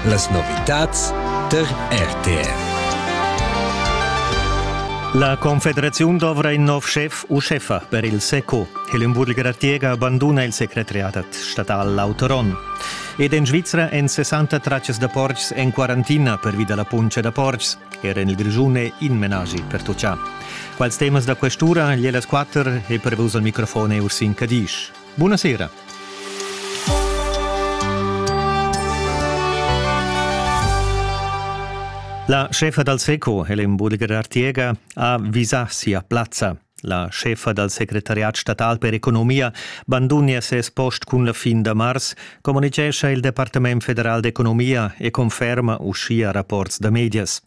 Las novitads tar RTR. La Confederaziun dovra in nov schef u scheffa per il SECO. Hellenburg Ratiega abanduna il secretariat statal Autoron. Ed en Svizra èn 60 traccias da portgs en quarantina pervi da la puntscha da portgs. Era en il Grischun è in menaschi pertuccà. Quals temas da questura, gliel las quatter, è pervus al microfon Ursin Cadisch. Buonasera. La chefa dal SECO, Helen Budiger Artiega, ha visà sia plazza. La chefa dal secretariat statal per economia bandunia ses post cun la fin da mars, communitgescha il Departament federal d'economia e conferma uschia rapports da medias.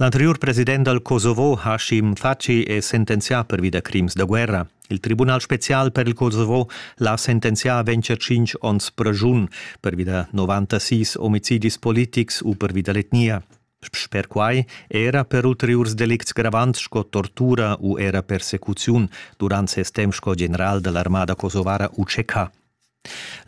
L'anteriur president dal Kosovo Hashim Thaçi è sentenzià pervi da crims da guerra. Il Tribunal spezial per il Kosovo l'ha sentenzià a vencer tschintg onns pragiun pervi da 96 omicidis politics u pervi da l'etnia. Sper quai era per ulteriurs delicts gravants sco tortura u era persecuziun durant ses temp sco general dell'armada kosovara UCK.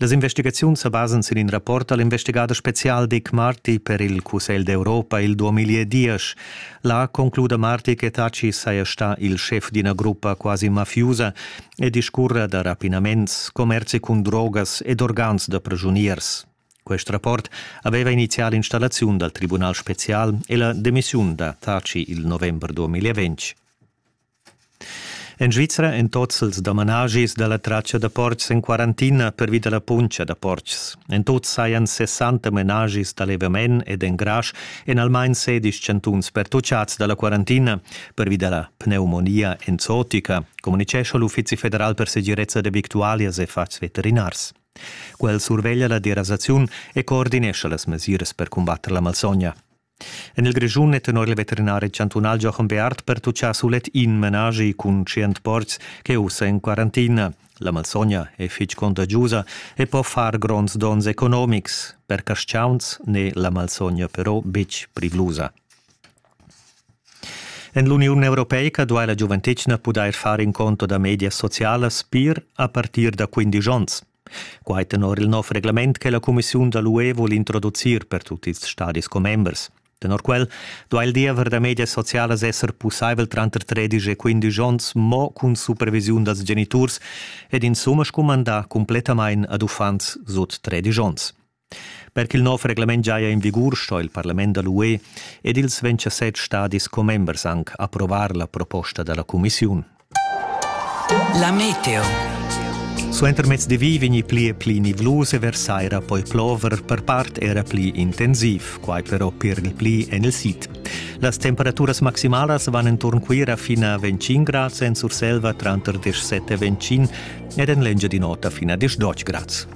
Las investigaziuns sa basan sin in rapport da l'investigader spezial Dick Marty per il Cussegl d'Europa il 2010. Là concluda Marty che Taci saja stà il schef d'ina gruppa quasi mafiusa e discurra da rapinaments, commerzi cun drogas ed organs da prigiuniers. Quest rapport aveva inizial l'installaziun dal Tribunal spezial e la demissiun da Taci il november 2020. En Svizra èn tozzels da manaschis da la tratscha da portgs en quarantina pervi da la puntscha da portgs. En tut sajan 60 menaschis da levament ed engrasch en almain sedisch chantuns pertuccads da la quarantina pervi da la pneumonia enzotica, communitgescha l'Uffizi federal per segirezza da victualias e fatgs veterinars. Quel surveglia la derasaziun e coordinescha las mesiras per cumbatter la malsogna. En il Grischun è tenor il veterinari chantunal Jochen Beart pertutgà sulet in menaschi cun tschient portgs che è ussa en quarantina. La malsogna è fitg contagiusa e po far gronds donns economics. Per casciauns n'è la malsogna però betg privlusa. En l'Uniun Europeica duai la giuventetgna pudair far in conto da medias socialas pir a partir da 15 onns. Quai tenor il nov reglament che la cumissiun da l'UE vul introducir per tut ils stadis commembers. Tenor quel duai il diever da medias socialas esser pussaivel tranter 13 e 15 onns mo cun supervisiun dals geniturs ed insumma scumandà cumplettamain ad uffants sut 13 onns. Per ch'il nov reglament giaja en vigur sto il parlament da l'UE ed ils ventasset stadis commembers anc approvar la proposta da la cumissiun. La meteo. Suenter mezdi vegni pli e pli nivlus e versaira poi plover per part era pli intensiv, quai però per il pli en il sid. Las temperaturas maximalas van enturn Cuira fino a 25 grads en Surselva tranter 17 e 25 ed en Lengia di nota fino a 18 grads.